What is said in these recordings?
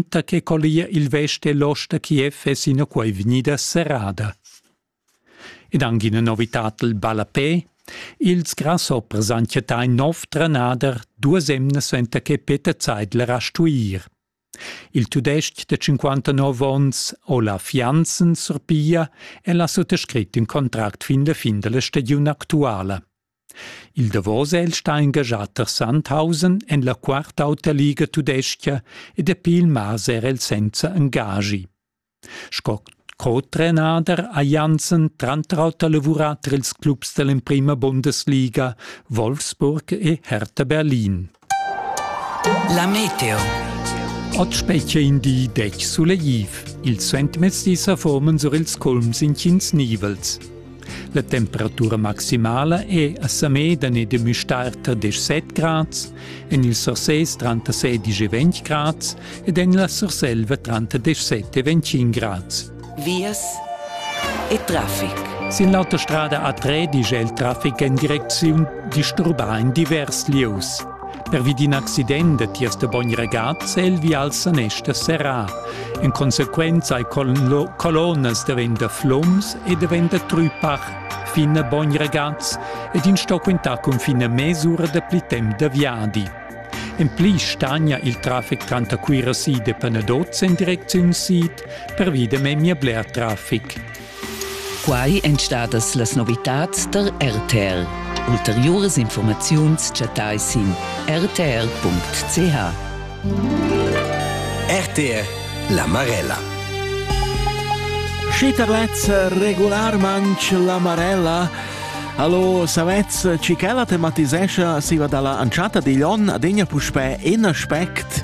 da che collia il vest e l'ost da Kiev è sinaquai vegnida serrada. Ed anche ina novitad il ballapè. Ils grasshoppers han chattà nov trenader duas emnas enta che Peter Zeidler ha stuir. Il tudestg de 59 onns Olaf Janssen surpiglia e la suttascrit in contract fin la fin della stagiun actuala. Il davos è el stà engaschà tar Sandhausen en la quarta auta liga tudestga e dapi il mas era el senza engaschi. Sco co-trenader ha Janssen tranter auter lavurà tar ils clubs da l'emprima Bundesliga Wolfsburg e Hertha Berlin. La meteo. Ot specie in di dec sulegliv. Il suentmezdi sa formen sur ils culms in cins nivels. La temperatura maximala è a Samedan e de Müstarter 17 grads, en il Surses 36 e 20 grads ed en la Surselva 37 e 25 grads. vias e traffic. Sin l'autostrada a Tred igl il traffic en direcziun disturbà in divers lieus. Pervi d'in accident da tiers de bogn regaz è il vial sanester serrà. En consequenza ai colonas daventa floms e daventa trupach fin a bogn regaz ed in sto quintar cun fina mesura da pli temp da viadi. En pli stagna il traffic tranter Cuira Sid e Panadozz en direcziun sid pervi da memia bler traffic. Quai èn stadas las novitads tar RTL. Ulteriuras informaziuns chattai sin rtr.ch. RTL La Marella. Schiterlez regularmanc la Marella Allo, savez, ci che la tematisescia siva dalla anciata digl on adegna puspè in aspect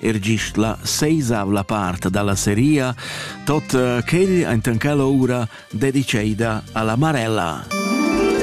er gist la seisavla part dalla seria, tot eh, quel enten quella ura dediceida alla Marella.